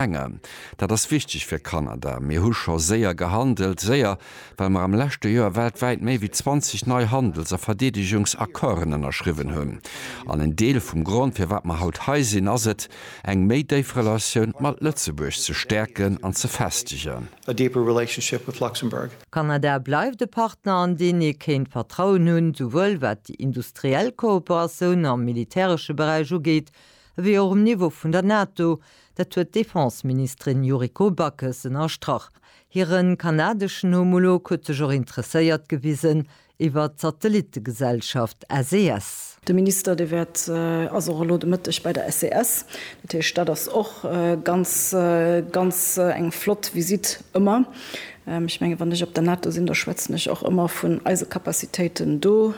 Enger. Dat ass wichteg fir Kanada. Mir hu scho séier gehandelt, séier, well mer am leschte Joer weltwäit méi wéi 20 nei Handels a Verdeedegungsaccorden ënnerschriwwen hunn. An en Deel vum Grond, firwat mer haut hei sinn, ass et, eng méi déif Relatioun mat Lëtzebuerg ze stäerken an ze festegen. Kanada bleift e Partner, an deen ee kéint Vertrauen hunn, souwuel wat déi industriell Kooperatioun am militäresche Beräich ugeet, Ewéi och um Niveau vun der NATO, dat huet d'Defenseministerin Yuriko Backes ënnerstrach. Hire kanadeschen Homolog huet sech och interesséiert gewisen iwwert d'Satellittegesellschaft SES. De Minister, dee wäert, ass och elo de Mëtteg bei der SES. Dat heescht, dat ass och ganz, ganz eng flott Visitt ëmmer. Ech mengen, wann ech op der NATO sinn, da schwätzen ech och ëmmer vun eise Capacitéiten do,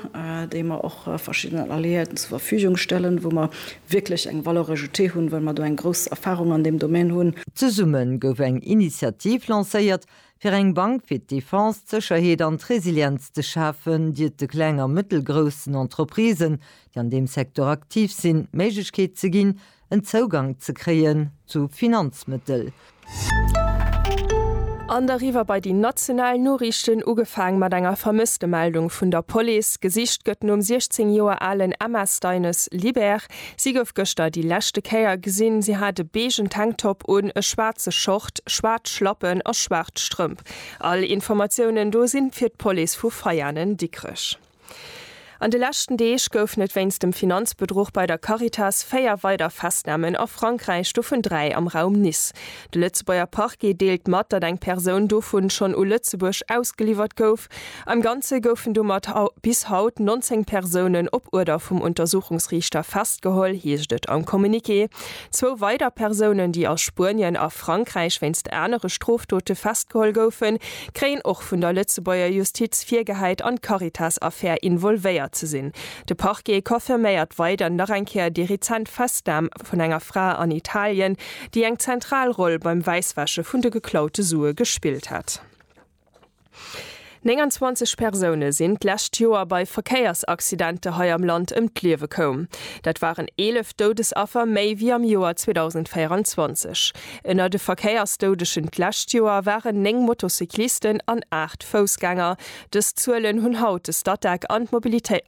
déi mer och verschiddenen Alliéierten zur Verfügung stellen, wou mer wierklech eng Valeur ajoutée hunn, well mer do eng grouss Erfahrung an deem Domän hunn. Zesumme gouf eng Initiativ lancéiert, fir eng Bank fir d'Defense, d'Sécherheet an d'Resilienz ze schafen, déi et de kleng a mëttelgroussen Entreprisen, déi an deem Secteur aktiv sinn, d'Méiglechkeet ze ginn, en Zougang ze kréien zu Finanzmëttel. An deriwwer bei déi national Noriichten, ugefaang mat enger Vermësstemeldung vun der Police. Gesicht gëtt nom 16 Joer alen Emma Steines Libert. Si gouf gëschter déi leschte Kéier gesinn. Si hat e beegen Tanktop un, e schwaarze Short, schwaarz Schlappen a schwaarz Strëmp. All Informatiounen do si fir d'Police vu Veianen-Dikrech. An de leschten Deeg goufen et wéinst dem Finanzbedruch bei der Caritas véier weider Festnamen a Frankräich, dovun dräi am Raum Nice. De Lëtzebuerger Parquet deelt mat, datt eng Persoun dovu schonn u Lëtzebuerg ausgeliwwert gouf. Am Ganze goufen domat bis haut 19 Persounen op Uerder vum Untersuchungsriichter festgeholl, heescht et am Communiqué. Zwou weider Persounen, déi a Spuenien a Frankräich wéinst anere Strofdote festgeholl goufen, kréien och vun der Lëtzebuerger Justiz virgehäit an d'Caritas-Affär involvéiert ze sinn. De Parquet confirméiert weider nach eng Kéier déi rezent Festnam vun enger Fra an Italien, déi eng zentral Roll beim Wäisswäsche vun de geklaute Sue gespillt hätt. 29 Persoune sinn d'lescht Joer bei Verkéiersaccidente hei am Land ëm d'Liewe koum. Dat waren 11 Doudesaffer méi wéi am Joer 2024. Ënner de Verkéiersdoudeschen d'lescht Joer waren 9 Motocyclisten an 8 Foussgänger. Dës Zuelen hunn haut de Statec an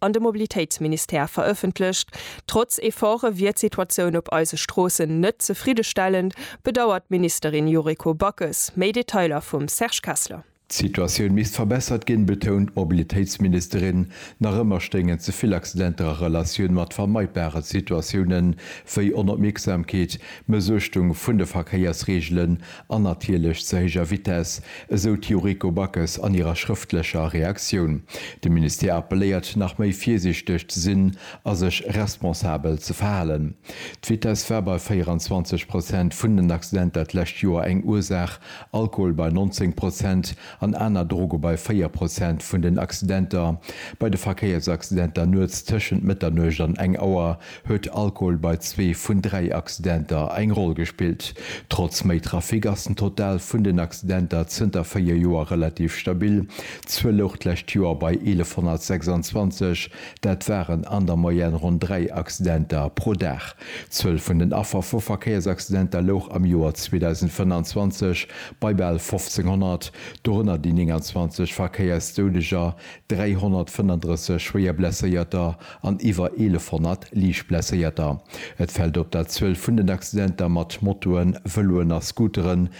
an de Mobilitéitsministère verëffentlecht. Trotz Efforte wier d'Situatioun op eise Stroossen net zefriddestellend, bedauert d'Ministerin Yuriko Backes. Méi Detailer vum Serge Kessler. D'Situatioun misst verbessert ginn, betount d'Mobilitéitsministerin. Nach ëmmer stéingen ze vill Accidenter a Relatioun mat vermeidbare Situatiounen, wéi Onopmierksamkeet, Mëssuechtung vun de Verkéiersreegelen an natierlech ze héijer Vitess, esou d'Yuriko Backes an hirer schrëftlecher Reaktioun. De Ministère appelléiert, nach méi virsiichteg ze sinn a sech responsabel ze verhalen. D'Vitess war bei 24 Prozent vun den Accidenter d'lescht Joer eng Ursaach Alkohol bei 19 Prozent an aner Droge bei 4 Prozent vun den Accidenter. Bei de Verkéiersaccidenter nuets tëschent Mëtternuecht an eng Auer huet Alkohol bei zwee vun dräi Accidenter eng Roll gespillt. Trotz méi Trafic ass den Total vun den Accidenter zënter véier Joer relativ stabil. D'Zuel louch d'lescht Joer bei 1126, dat waren an der Moyenne ronn dräi Accidenter pro Dag. D'Zuel vun den Affer vu Verkéiersaccidenter louch am Joer 2025 bei bal 1500, dorënner déi 29 Verkéiersdoudeger, 335 Schwéierblesséierter an iwwer 1100 Liichtblesséierter. Et fält op, dat d'Zuel vun den Accidenter mat Motoen, Vëloen a Scooteren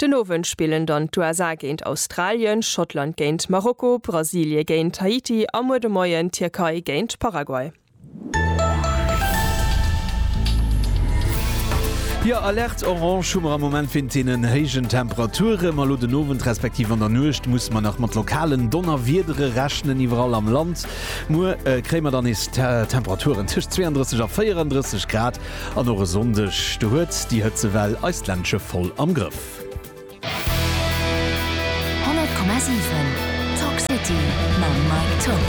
Den Owend spillen dann d'USA géint Australien, Schottland géint Marokko, Brasilie géint Haiti a muer de Moien d'Tierkei géint Paraguay. Jo, Alerte orange hu mer am Moment wéint deenen héijen Temperaturen. Ma elo den Owend respektiv an der Nuecht musse mer nach mat lokalen Donnerwiedere rechnen iwwerall am Land. Muer kréie mer dann nees Temperaturen tëscht 32 a 34 Grad. An och e Sonndeg do huet déi Hëtzewell eist Ländche voll am Grëff. 100,7 Talk City mam Mike Tock.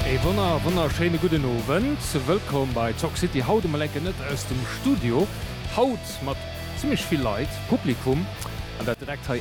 E wonner wonnerschéine gudden Owend. Wëllkomm bei Talk City. Haut emol enke net aus dem Studio. Haut mat zimmlech vill Leit, Publikum, an dat direkt hei